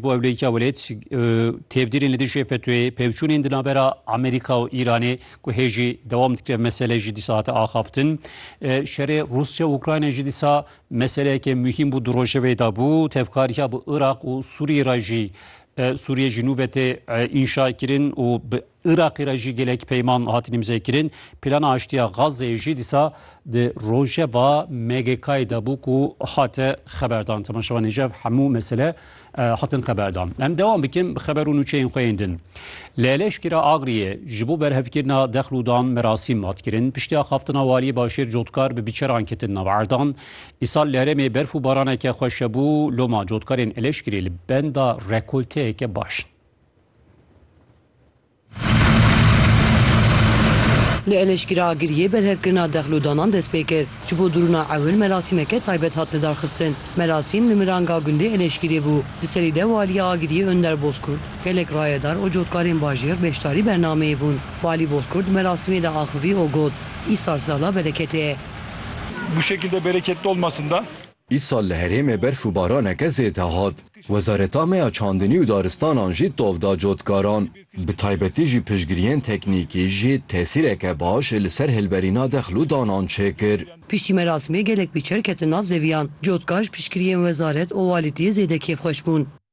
Bo ew lêkiya welêt têvdîrên li dijî FETÖ'yê, pevçûnên di navbera Amerîka û Îranê ku hê jî dewam dikir ev mesele jî dîsa hate axaftin. Şerê Rûsya û Ukraynayê jî dîsa meseleyeke muhîm bû di rojevê de bû. Tevkariya bi Iraq û Sûriyê re jî Sûriyê jî nû ve tê înşakirin û bi Iraqê re jî gelek peyman hatin îmzekirin. Plana aştiya Gazeyê jî dîsa di rojeva MGK'ê de bû ku hate xeberdan. Temaşevanê ji ev hemû mesele hatin xeberdan. Em dewam bikin bi xeber û nûçeyên xwe yên din. Li Eleşkira Agriyê ji bo berhevkirina dexl û dan merasîm hat kirin. Piştî axaftina Waliyê Başêr Cotkar bi biçeran ketin nav erdan. Îsal li herêmê berf û baraneke xweş hebû. Loma cotkarên Eleşkirê li benda rekolteyeke baş in. Li Eleşkira Agiriyê berhevkirina dexlodanan dest pê kir. Ji bo dirûna ewil merasîmeke taybet hat lidarxistin. Merasîm li miranga gundê Eleşkirê bû. Li serî de Waliya Agiriyê Önder Bozkurt, gelek rayedar û cotkarên bajêr beşdarî bernameyê bûn. Walî Bozkurt di merasîmê de axivî û got, Îsar sala bereketê ye. Bu şekilde bereketli olmasında. Îsal li herêmê berf û baraneke zêde hat. Wezareta me ya çandinî û daristanan jî tov da cotkaran. Bi taybetî jî piştgiriyên teknîkî jî tesîreke baş li ser hilberîna dex lû danan çêkir. Piştî merasimê gelek pîçer ketin nav zeviyan. Cotkar ji piştgiriyên wezaret û walîtiyê zêde kêfxweş bûn.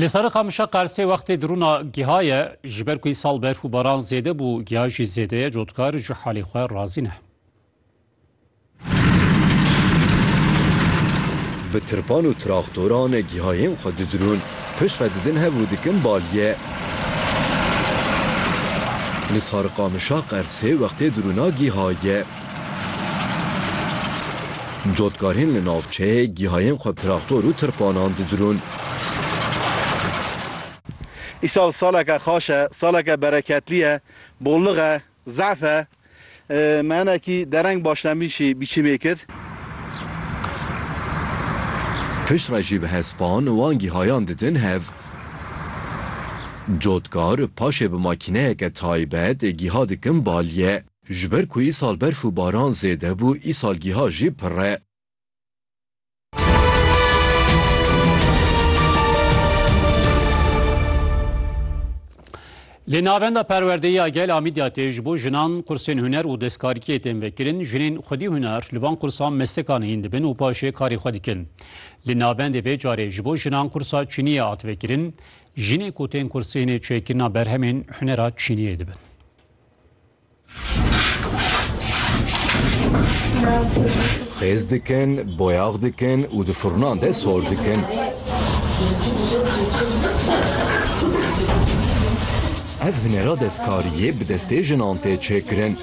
Li serê qamişa qersê wextê dirûna giha ye ji ber ku îsal berf û baran zêde bû giha jî zêde ye cotkar ji halê xwe razî ne. Bi tirpan û traktoran gihayên xwe didirûn, piştre didin hev û dikin baliyê. Li Sarıqamışa Qersê wextê dirûna giha ye. Cotkarên li navçeyê gihayên xwe bi traktor û tirpanan didirûn. Îsal saleke xaş e, saleke bereketlî ye, bollix e, zehf e. Me hinekî dereng başlembîşî biçîmê kir. Piştre jî bi hespan wan gihayan didin hev. Cotkar paşê bi makîneyeke taybet giha dikin balye. Ji ber ku îsal berf û baran zêde bû, îsalgîha jî pirr e. Li Navenda Perwerdeyê ya Gel a Midyatê ji bo jinan qursên huner û destkarîkiyê tên vekirin. Jinên xwedî huner li van qursan mestekan hîn dibin û paşê karê xwe dikin. Li navendê vê carê ji bo jinan qursa çîniyê hat vekirin. Jinê ku tên kursê hinê çêkirina berhemên hunera çîniyê dibin. Xêz dikin, boyax dikin û di furnan de sor dikin. Ev hunera destkariyê bi destê jinan tê çêkirin.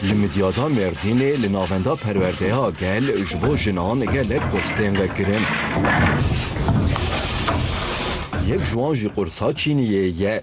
Li Midyada Mêrdînê li navenda perwerdeya gel ji bo jinan gelek kurs tên vekirin. Yek ji wan jî qursa çîniyê ye.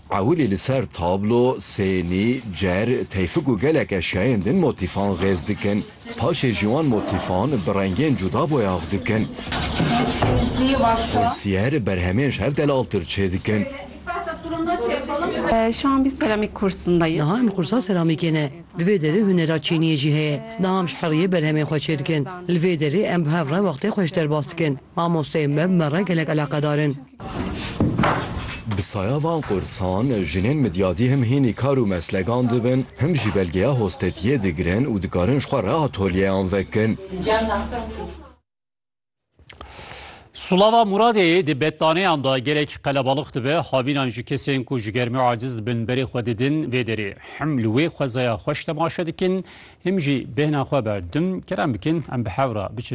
Ewilî li ser tablo, sênî, cer, teyfik û gelek eşyayên din motîfan xêz dikin. Paşê jî wan motîfan bi rengên cuda boyax dikin. Kursîyer, berhemên ji hev delaltir çêdikin. Şu an biz seramik kursundayız. Niha em kursa seramîkê ne. Li vê derê hunera çîniyê jî heye. Niha em ji heriyê berhemên xwe çêdikin. Li vê derê em bi hev re wextê xwe ji derbas dikin. Mamosteyên me bi me re gelek eleqedar in. Bi saya van qursan jinên midyadî him hînî kar û meslegan dibin, him jî belgeya hostetiyê digirin û dikarin ji xwe re atolyeyan vekin. Sulava Muradê di betlaneyan de gelek qelebalix dibe, havînan ji kesên ku ji germî aciz dibin berê xwe didin vê derê. Him li wê xwezaya xweş temaşe dikin, him jî bêhna xwe berdim. Kerem bikin em bi hev re biçin.